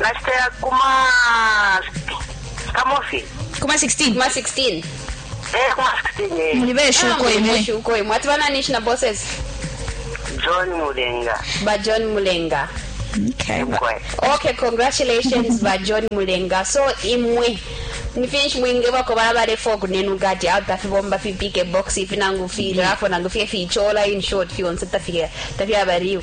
Nashita ya kuma kamofi. Kuma 16. Kuma 16. Eh kuma 16 eh. Muli besho ah, ko imwe. Besho ko imwe. Atibana nishi na bosses. John Mulenga. Ba John Mulenga. Okay. Okay, congratulations ba John Mulenga. So imwe nifinshi mwinge bako bala balefo kunenu gati au tafibomba fipike box ifinangu fira apo nangu fye fichola in short fyonse tafika tafya bariu